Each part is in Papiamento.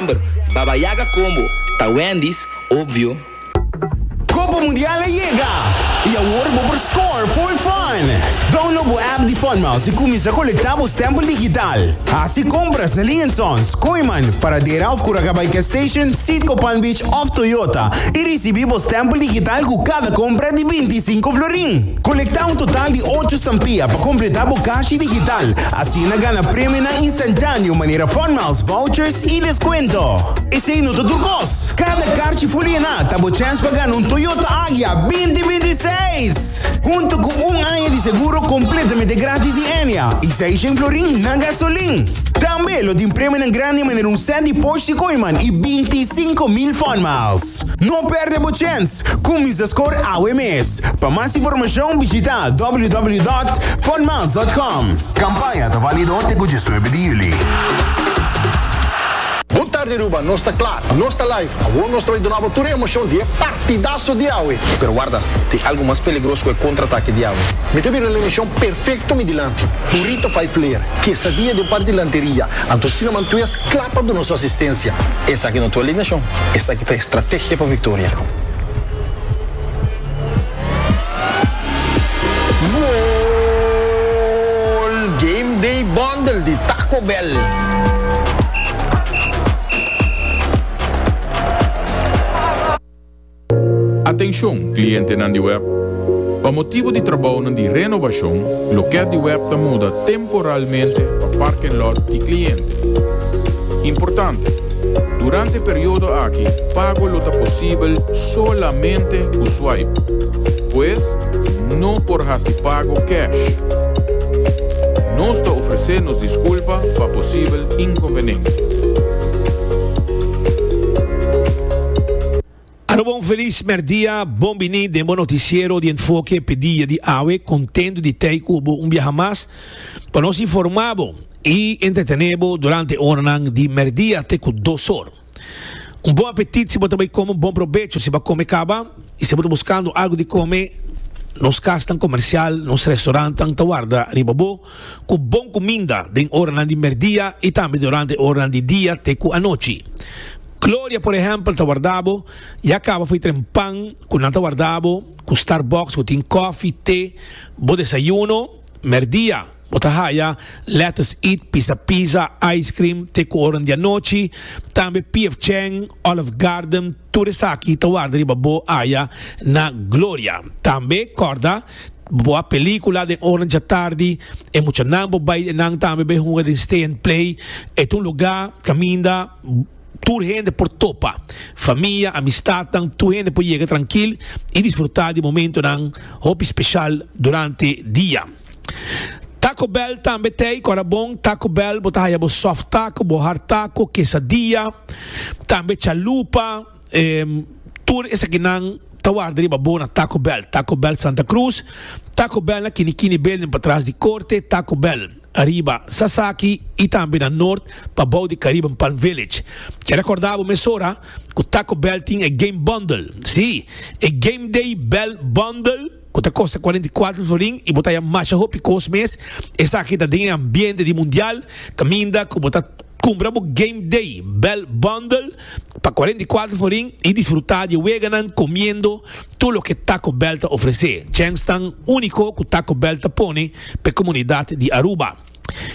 December, Baba Yaga Combo, ta Wendy's, obvio. Copa Mundial a yega y awor bo por score fooi fun! Download bo app di Funmouse y cuminsa colecta bo stempel digital. Haci compras na Liensons, Kooiman, Paradera of Curacabai Gas Station, Citgo Palm Beach of Toyota y ricibi bo stempel digital cu cada compra di binti i sinku florin. Colecta un total di ocho stampia pa completa bo cashi digital, asina gana premionan y. Tantani un manera fon miles vouchers y descuento. Esey no ta tur cos. Cada carchi fuliena ta bo chance pa gana un Toyota Agya binti binti i seis. Hunto cu un aña di seguro completamente gratis di Enia y Seishen florin na gasolin. Tambe lo tin premionan grandi manera un set di Porsche Cayman y binti i cinco mil fon miles. No perde bo chens! Cuminsa scor awe mes! Pa mas informacion bishita www.funmiles.com. Campaña ta valido te cu diesnuebe di juli. Good tarde Aruba, nos ta kla, nos ta live. Awor nos ta bai duna bo tur e emocion di e partidaso di awe. Pero warda, tin algo mas peligros ku e kontratake di awe. Mi ta bira el emishon perfekto mi dilanti. Purito fai fler, kesadia den par di lanteria. Anto Cinnamon Twist, Kla pa duna su asistencia. Esaki no ta alineacion, esaki ta estrategia pa victoria. Goal! Game Day Bundle di Taco Bell. Atenshon, klientenan di web! Pa motibu di trabounan di renobashon, lokèt di web ta muda temporalmente pa parken lòt di kliente. Importante, Durante e periodo aki, pago lo ta posibel solamente ku swipe. Pues, no por hasi pago cash. Nos ta ofresé nos diskulpa pa posibel inkonvenensia. Arobo un felis mèrdia, bon bini den bo notisiero di Enfoke p'e dia di awe. Kontentu di tei ku bo un biaha mas pa nos informá bo i entretené bo durante e oranan di mèrdia te ku dos or. Un bon apetit si bo ta bai kome, un bon probecho si bo a kome kaba i si bo ta buskando algu di kome, nos kasnan komersial, nos restorannan ta warda riba bo. ku bon kuminda den oranan di merdia i tambe durante oranan di dia te ku anochi. Gloria, por ehèmpel, ta warda bo ya kaba for tren pan ku nan ta warda bo ku Starbucks ku tin kòfi, te. Bo desayuno, merdia, bo ta haya lettuce eat, pisa pizza, ice cream, te ku oranan di anochi tambe PF Chang, Olive Garden, Tur esaki ta warda riba bo aya na gloria. Tambe kòrda bo a pelíkula den ora djatardi, e muchanan bo bai enan tambe bai hunga den Stay and Play. E ta un lugá kaminda tur hende por topa, famia, amistatnan, tur hende por yega trankil i disfrutá di momentonan hopi speshal durante dia. Taco Bell tambe ta ei ku ora bon Taco Bell bo ta haya bo soft taco bo hard taco quesadilla tambe chalupa em tur esaki nan ta warda riba bo na Taco Bell Taco Bell Santa Cruz Taco Bell na kini kini building patras di korte Taco Bell ariba Sasaki i tambe na nort pa bou di Caribe en Palm Village ke rekorda bo mesora ku Taco Bell tin e game bundle si e game day bell bundle cu ta costa cuarenta y cuatro florin y bo ta haya masha hopi cos mes, esaki ta den e ambiente di Mundial, caminda cu bo ta cumpra bo Game Day Bell Bundle pa cuarenta y cuatro florin y disfruta di e weganan comiendo tur loke Taco Bell ta ofrece, djens tan unico cu Taco Bell ta pone p'e comunidad di Aruba.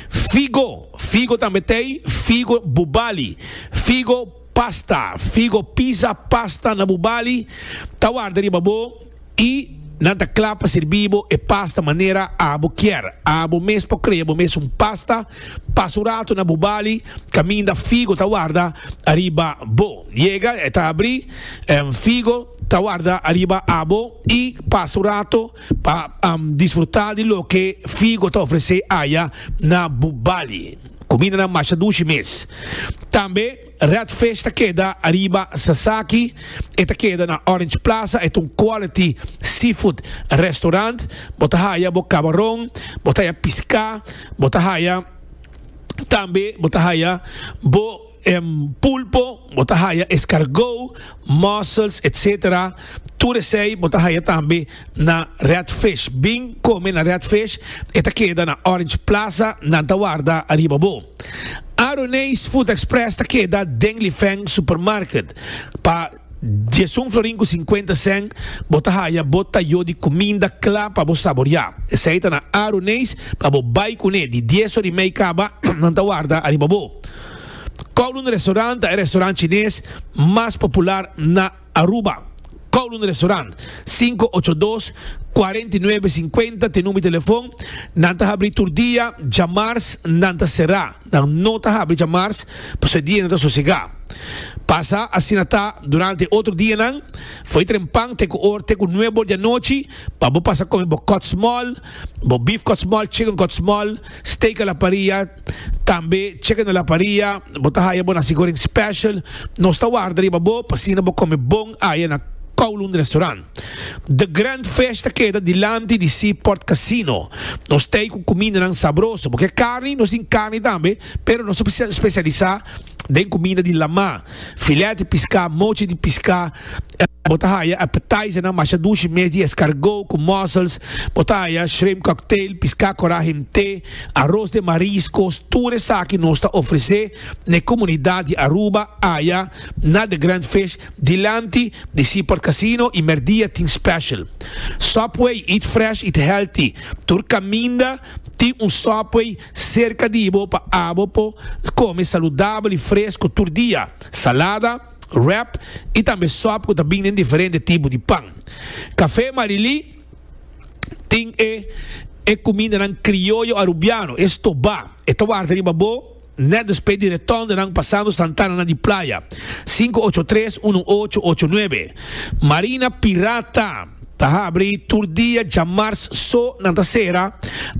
Figo, Figo tambe t'ey, Figo Bubali, Figo. Pasta, Figo pisa pasta na bu bali, ta warda riba bo i nan ta kla pa sirbi bo e pasta manera abo kier. Abo mes por krea bo mes un pasta pas un ratu na bu bali kaminda figo ta warda ariba bo. Yega e ta abri, figo ta warda ariba abo i pasa un ratu pa disfruta di loke figo ta ofrese aya na bu bali. Kumindanan masha dushi mes. Tambe Red Fish ta keda ariba Sasaki, e ta keda na Orange Plaza, e ta un quality seafood restaurant. Bo ta haya bo kabaron, bo ta haya piská, bo ta haya tambe bo ta haya bo E pulpo bo ta haya escargot, mussels etc. Tur esey bo ta haya tambe na Red Fish. Bin come na Red Fish, e ta keda na Orange Plaza, nan ta warda ariba bo. Aroneis Food Express ta keda den Lifeng Supermarket pa Diesun florin ku sinkuenta sèn bo ta haya bo ta yo di kuminda kla pa bo saboriá. Esei ta na aru neis pa bo bai kuné di dies or i mei kaba nan ta warda ariba bo. Kowloon Restaurant ta e restaurant chines mas popular na Aruba. Kowloon Restaurant, sinku ocho dos, kuarenta i nuebe, sinkuenta te number di telefon. Nan ta habrí tur dia, djamars nan ta será. Nan no ta habri djamars pasobra e dianan ta sosegá. Pasa asina ta durante e otro dianan. Fo'i tren pan te ku or te ku nuebe or di anochi pa bo pasa kome bo kòtsmòl, bo bif kòtsmòl, chicken kòtsmòl, steak a la paria, tambe chicken a la paria. Bo ta haya bo nasi goreng special. Nos ta warda riba bo pa asina bo kome bon aya na Kowloon Restaurant. The Grand Fish ta keda dilanti di Seaport Casino. Nos ta ei ku kumindanan sabroso, bo ke karni? Nos tin karni tambe, pero nos ta spesialisá den kuminda di lamá, filèt di piská, mochi di piská. Bo ta haya appetizernan masha dushi mes di eskargó ku mussels, bo ta haya shrimp cocktail, piská korá himté, aros den mariskos, tur esaki nos ta ofresé na e komunidat di Aruba, aya na The Grand Fish. Dilanti di Seaport Casino y merdia tin special Subway eat fresh eat healthy tur caminda tin un Subway cerca di bo pa abo por come saludabel y fresco tur dia salada wrap y tambe sub cu ta bin den diferente tipo di pan Café Marilí tin e e cumindanan crioyo Arubiano e stoba e ta warda riba bo. Net despues di retornnan pasando Santana na di playa, sinku ocho tres unu ocho ocho nuebe, Marina Pirata ta habri tur dia djamars so nan ta sera,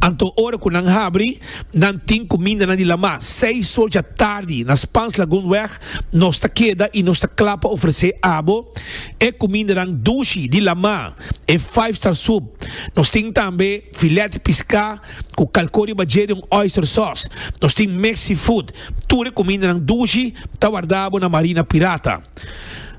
anto ora ku nan habri nan tin kuminda nan di lama, seis so dja tardi na Spans Lagoon weg nos ta keda i nos ta kla pa ofresé abo e kumindanan dushi di lama, e five star soup, nos tin tambe. Filet piská ku kalkó riba dje di un oyster sauce. Nos tin mes seafood. Tur e kumindanan dushi ta wardabo na Marina Pirata.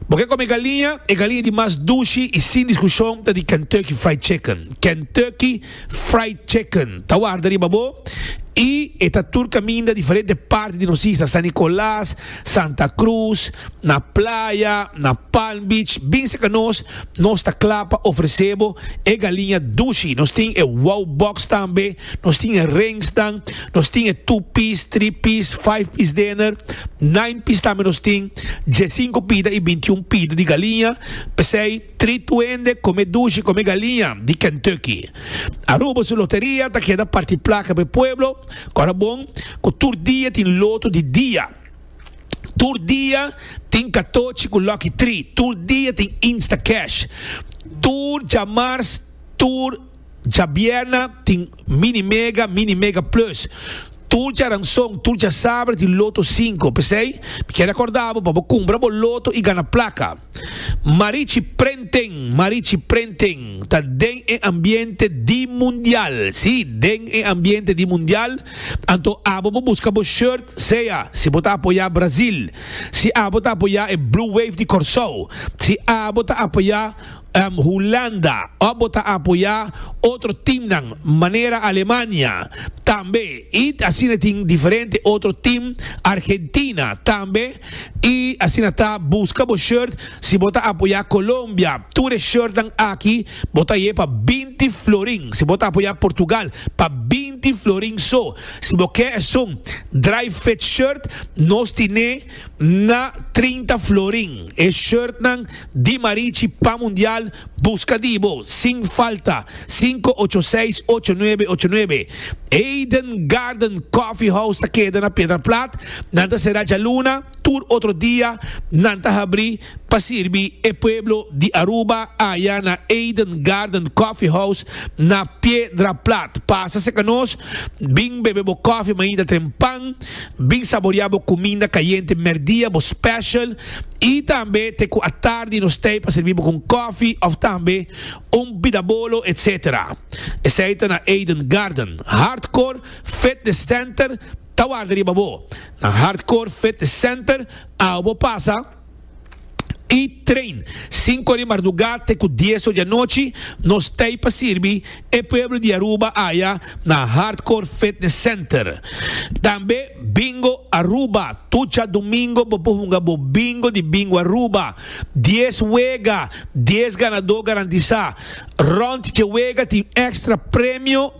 Bo ke kome galiña? E galiña di mas dushi i sin diskushon ta di Kentucky Fried Chicken. Kentucky Fried Chicken ta warda riba bo i e ta tur kaminda diferente parti di nos isla, San Nicolas, Santa Cruz, na Playa, na Palm Beach, bin serka nos, nos ta kla pa ofresé bo e galiña dushi. Nos tin e Wow Box tambe, nos tin e Ringsnan, nos tin e Two Piece, Three Piece, Five Piece Dinner, Nine Piece tambe nos tin, diesinco pida i bintiun pida di galiña, p'esei trit tu hende komé dushi, komé galiña di Kentucky. Aruba su loteria ta keda parti plaka pa e pueblo. Ora bon cu tur dia tin loto di dia. Tur dia tin catochi cu lucky tri. Tur dia tin instacash. Tur djamars, tur djabierna tin mini mega, mini mega plus. Tur djaranson, tur djasabre tin loto cinco. P'esey mi kier recordabo pa bo cumbra bo loto y gana placa. Marichi Prenten Marichi Prenten ta den e ambiente di mundial, si, den e ambiente di mundial, anto abo bo buska bo shirt, sea si bo ta apoya Brazil, si abo ta apoya e Blue Wave di Corsou, si abo ta apoya Hulanda of bo ta apoya otro teamnan manera Alemania tambe y asina tin diferente otro team Argentina tambe. Y asina ta busca bo shirt si bo ta apoya Colombia. Tur e shirtnan aki bo ta ye pa binti florin. Si bo ta apoya Portugal pa binti florin so. Si bo ke esun dry fit shirt nos tine na trinta florin. E shirtnan. di Marichi Pan Mundial buska di bo sin falta sinku ocho seis ocho nuebe ocho nuebe Eden Garden Coffee House ta keda na Piedra Plat nan ta sera djaluna tur otro dia nan ta habri pa sirbi e pueblo di Aruba aya na Eden Garden Coffee House na Piedra Plat pasa seka nos bin bebe bo coffee mainta tren pan Bin saborea bo cuminda cayente merdia, bo special, y tambe te cu atardi nos t'ey pa sirbi bo cu un cofi of tambe un bidabolo etc. Esey ta na Eden Garden. Hardcore Fitness Center ta warda riba bo. Na Hardcore Fitness Center awe bo pasa. i train sinku di mardugá te ku dieso di anochi nos tei pa sirbi e pueblo di Aruba aya na Hardcore Fitness Center. Tambe Bingo Aruba, tur dja domingo bo por hunga bo bingo di Bingo Aruba. Dies wega, dies ganadó garantisá. Rònt dje wega tin èkstra premio.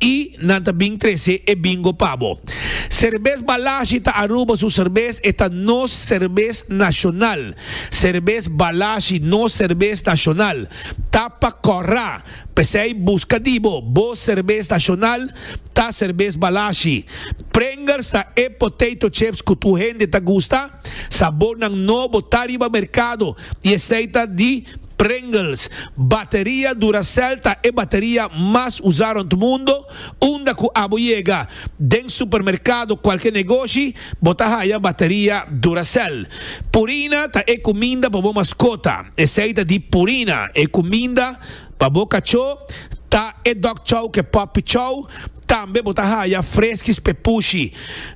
I nan ta bin trese e bingo pa bo. Serbes Balashi ta Aruba su serbes, e ta nos serbes nashonal. Serbes Balashi, nos serbes nashonal, ta pa kòrra. P'esei buska di bo, bo serbes nashonal ta serbes Balashi. Pringles ta e potato chips ku tur hende ta gusta. Sabornan nobo ta riba merkado i esei ta di. Pringles, Bateria Duracell ta e bateria mas usá rond mundo, unda ku abo yega den supermerkado kualke negoshi bo ta haya bateria Duracell. Purina ta e kuminda pa bo maskota, esei ta di Purina, e kuminda pa bo kachó ta e Dog Chow ke Puppy Chow, Tambe bo ta haya freskis p'e pushi.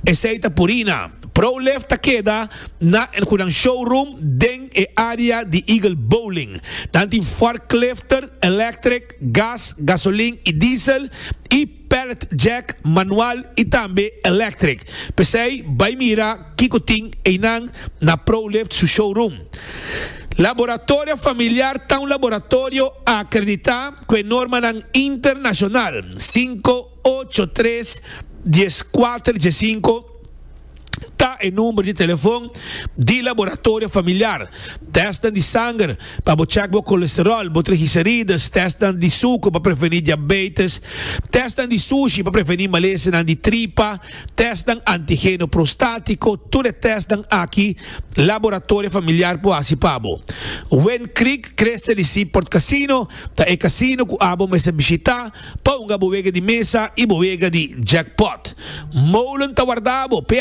Esei ta Purina. ProLift ta keda na El Hunan Showroom den e área di Eagle Bowling. Nan tin forklifter, electric, gas, gasolin i diesel, i pallet jack, manual i tambe electric. P'esei bai mira kiko tin einan na ProLift su showroom. Laboratorio Familiar ta un laboratorio a akreditá Cu e normanan internacional cinco, ocho, tres, diez, cuater, diez, cinco ta e number di telefon di laboratorio familiar. Testnan di sanger pa bo check bo colesterol, bo trigicerides, testnan di sucu pa preveni diabetes, testnan di sushi pa preveni malesenan di tripa, testnan antigeno prostatico, tur e testnan aki laboratorio familiar por haci pa bo. Win Creek Creste di Seaport Casino ta e casino cu abo mester bishita pa hunga bo wega di mesa y bo wega di jackpot. Molen ta wardabo pe.